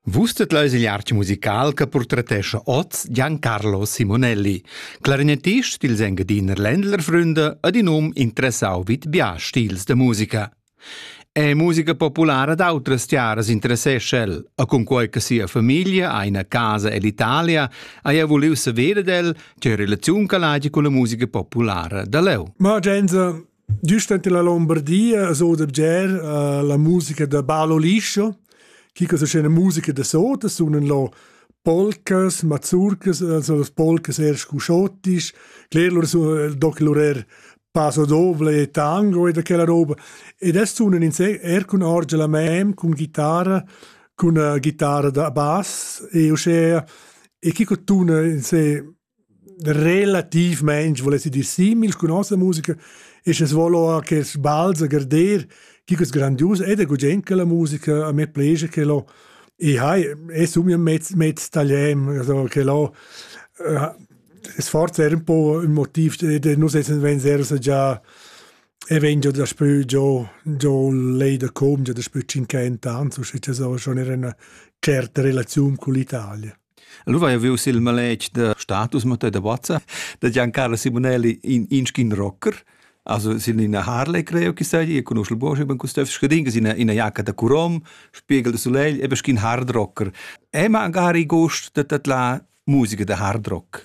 Vus tet leis igl artg musical che portretescha oz Giancarlo Simonelli, clarinetist dils Engadiner Ländlerfründe ad in um interessau vid bia stils de musica. È musica populara d'autras tiaras interessescha el, a cunquei che sia famiglia ha ina casa ell'Italia, haja vuliu saver ed el tge relaziun che l'hagi con la musica populara da leu. Ma Gense, Giust enten la Lombardia as oda bger uh, la musica da Balo Liscio, chi que sun scena musica da sotas, sunan lo polcas, mazurcas, also las polcas er scuscottisch, cler lur sun doc lur er paso doble e tango e da quella roba. Ed es sunan er cun orgia la mem, cun ghitara, cun uh, ghitara da bass e uschea e chi tuna in se relatiivmaing voul esser dir simil cun nossa musica isch es vo lò quels bals a garder, chi es grandius ed è gugent quella musica, a me plegia que lò e hai e sun io mez mez tagliem, also que lò es forsa eir ün po ün motiv ed nus essan vegns eir già e vegn giò daspö giò giò lei da com già daspö tschinchent ans usche cha so schon eir üna tscherta relaziun cun l'Italia. Lu vai viu sil maletg da status Mattei da Bozza da Giancarlo Simonelli in inschin rocker. Also sin ina Harley creo chi sai, io conosco il Bosch, ben custef scadin che ina ina jacca da Curom, spiegel de Soleil, e beschin hard rocker. E magari gost da tat la musica da hard rock.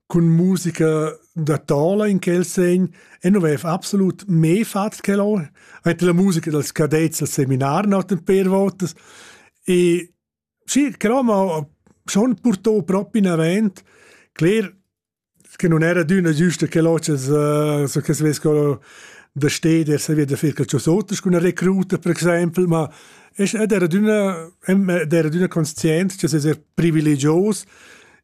cun musica da tola in quel segn e non vev absolut me fat quel or hat la musica dals cadets al seminar not per votas e sì però ma schon portò proprio in avant cler che non era d'una giusta che locas uh, so che se vescono da steder se via da fer calcio sotas con una recruta per exempel ma ed era d'una ed era d'una conscient che se privilegios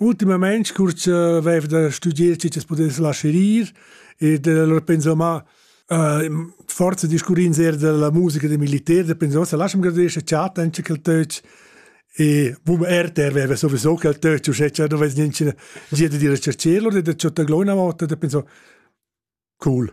Ultimament curz avev da studier tü t'es pudess lascher ir e allora penso ma äh, forza discurrins eir della musica da militer, da penso sa lasciam gradesce chat anche quel töch e bum RTR aveva sowieso quel töch uschè cha dovess niente gir da dire cercelo da ciotta glona volta da penso cool